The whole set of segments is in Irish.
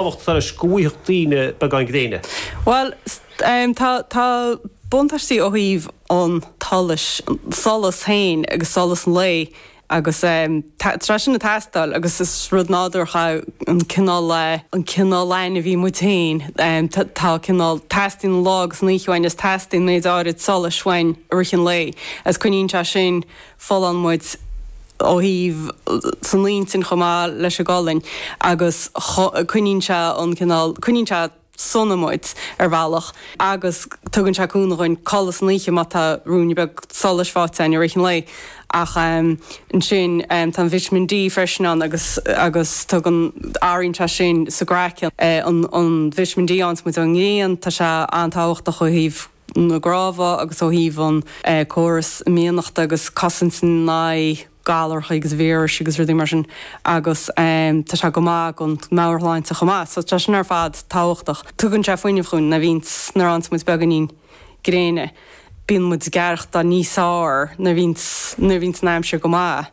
tábhacht atá leis go bhfaighfeadh daoine beagán gréine. Bhuel, tá buntáistí ó thaobh an tsolais, an solas féin agus solas an lae agus tá sé sin ag teastáil agus is rud nádúrach é an cineál, an cineál ainmhí muid féin, tá cineál, teastaíonn an lá agus an oíche uainn agus teastaíonn méid áirid solais uainn i rith an lae agus coinníonn sé sin Folláin muid ó thaobh san intinn chomh maith leis an gcolainn agus coinníonn sé an cineál, coinníonn sé sona muid ar bhealach agus tugann sé cúnamh dhuinn codladh san oíche má tá ruainne beag solais faighte againn i rith an lae. Ach ansin tá an Vitamin D freisin ann agus agus tugann, athraíonn sé sin sa gcraiceann, an Vitamin D a fhaigheanns muid ón ngrian, tá sé an-tábhachtach ó thaobh. na gcnámha agus ó thaobh an córas imdhíonachta agus cosaint in aghaidh galracha agus víris agus rudaí mar sin agus tá sé go maith ag an meabhairshláinte chomh maith so tá sin ar fad tábhachtach. Tugann sé fuinneamh dhúinn nuair a bhíonns nuair a fhaigheanns muid beagáinín gréine bíonn muid ag aireachtáil níos fearr nuair a bhíonns nuair a bhíonns an aimsir go maith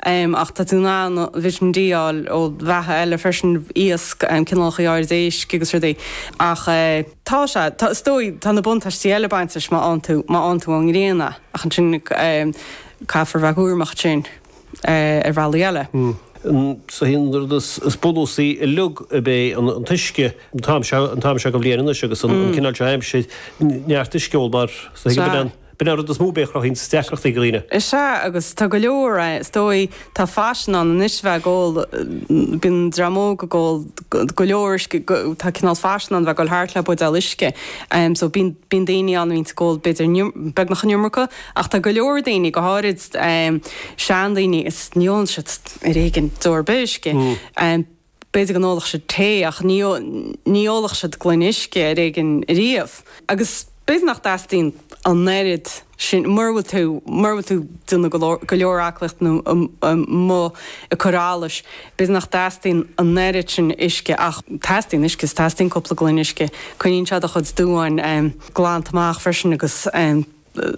ach tá tú in ann vitamin D a fháil ó bheatha eile freisin, iasc, cineálacha áirid éisc agus rudaí. Ach. Tá sé. Tá, is dóigh. Tá na buntáistí eile ag baint leis má fhaigheann tú, má fhaigheann tú ón ngrian é. Ach ansin caithfear a bheith cúramach ansin ar bhealaí eile. Sea, an rud is bunúsaí uilig ab é an t-uisce. An t-am seo, an t-am seo den bhliain anois agus an cineál seo aimsire, neart uisce a ól mar, sea, B'in an rud is mó b'fhéidir a chruthaíonns deacrachtaí do dhaoine. Is ea, agus tá go leor, is dóigh, tá faisean ann anois a bheith ag ól, bíonn dream óg ag ól go leor uisce, tá cineál faisean ann a bheith ag dul thart le buidéal uisce. So bíonn, bíonn daoine ann a bhíonns ag ól b'fhéidir beagnach an iomarca, ach tá go leor daoine, go háirid seandaoine, is ní ólann siad ar éigean deoir ar bith uisce. B'fhéidir go n-ólfadh siad tae ach ní ólfadh siad gloine uisce ar éigin riamh. Agus b'fhéidir nach dteastaíonn an oiread sin, mura bhfuil tú, mura bhfuil tú ag déanamh go leor aclaíocht nó amuigh ag cur allais, b'fhéidir nach dteastaíonn an oiread sin uisce ach teastaíonn uisce is teastaíonn cúpla gloine uisce. Coinníonn sé do chuid duáin glanta amach freisin agus.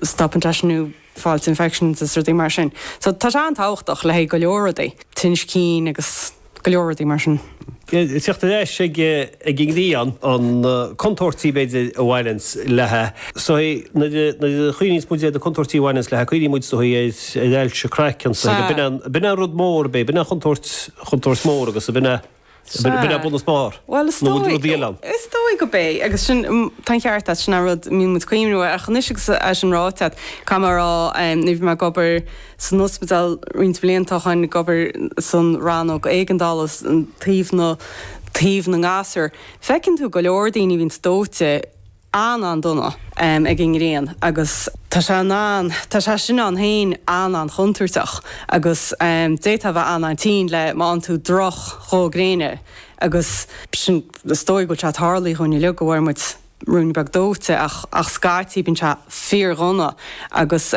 stopann sé sin thú ag fáilt infections is rudaí mar sin. So tá sé an-tábhachtach le haghaidh go leor rudaí, tinnis cinn agus go leor rudaí mar sin. Tíocht ar ais ag an ngrian, na contúirtí b'fhéidir a bhaineanns léi is dóichí, nuair a chuimhníos muid ar na contúirtí a bhaineanns léi, cuimhníonn muid is dóichí ar ailse craicinn is dóichí, b'in é an rud mór, b'in é an chontúirt, chontúirt mór agus b'in é. Sea. B'in é bun is barr. Bhuel, is Nó dóigh, rudaí eile ann. is dóigh go bé, agus sin, m, tá an ceart agat, sin an rud a mbíonn muid ag cuimhniú. Ach anois agus é sin ráite agat, caithfidh mé a rá, em, nuair a bhí mé ag obair san ospidéal roinnt blianta, chaithfinn ag obair san rannóg éigeandálas, taobh na, taobh na ngasúr, feiceann tú go leor daoine a bhíonns dóite, an-an-dona ag an ngrian agus tá sé in ann, tá sé sin ann féin an-an-chontúirteach agus d'fhéadfá a bheith an-an-tinn le má fhaigheann tú droch dhó gréine agus sin, is dóigh go bhfuil sé tarlaithe dhúinn uilig go bhfuair muid ruainne beag dóite ach scaití bíonn sé fíor-dhona agus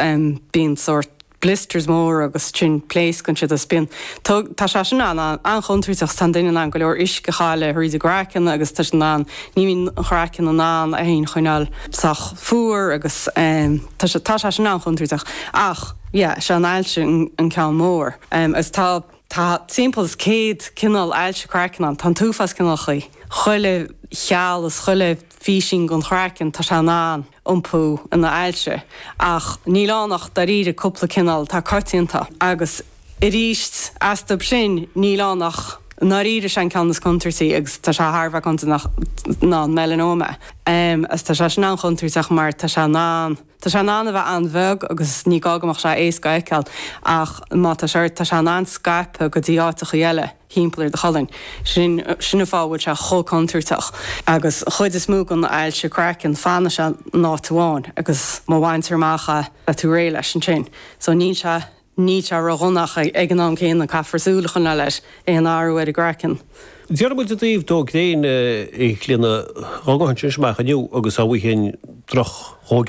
bíonn sórt. blisters mór agus sin pléascann siad is bíonn tug tá sé sin an an-chontúirteach tá an duine in ann go leor uisce a chailleadh thríd an gcraiceann agus tá siad in ann ní bhíonn an craiceann in ann é féin a choinneáil sách fuar agus tá sé tá sé sin an-chontúirteach ach yeah sé an ailse an ceann mór agus tá tá timpeall is céad cineál ailse craicinn ann tá an t-uafás cineálacha chuile chill is chuile phísín den chraiceann tá sé in ann iompú ina ailse. Ach níl ann ach dairíre cúpla cineál atá coitianta, agus arís, istigh ansin, níl ann ach i ndáiríre sé an ceann is contúirtí, agus tá sé thar a bheith contúirteach, ná an melanoma. Agus tá sé sin an-chontúirteach mar tá sé in ann, tá sé in ann a bheith an-bheag agus ní gá go mbeadh sé éasca a fheiceáil, ach má tá sé ort, tá sé in ann scaipeadh go dtí áiteachaí eile. thimpeall ar do cholainn. Sin an fáth a bhfuil sé chomh contúirteach. Agus an chuid is mó den ailse craicinn, fanann sé in áit amháin agus má bhaintear amach é, beidh tú réidh leis ansin. So níl sé, níl sé ródhona ach ag an am céanna caithfear súil a choinneáil ar aon athrú ar an gcraiceann. Déarfaidh muid i dtaobh dó gréine a Chlíodhna dhá ngabhfainnse amach inniu agus dhá bhfuighinn droch dhó gréine.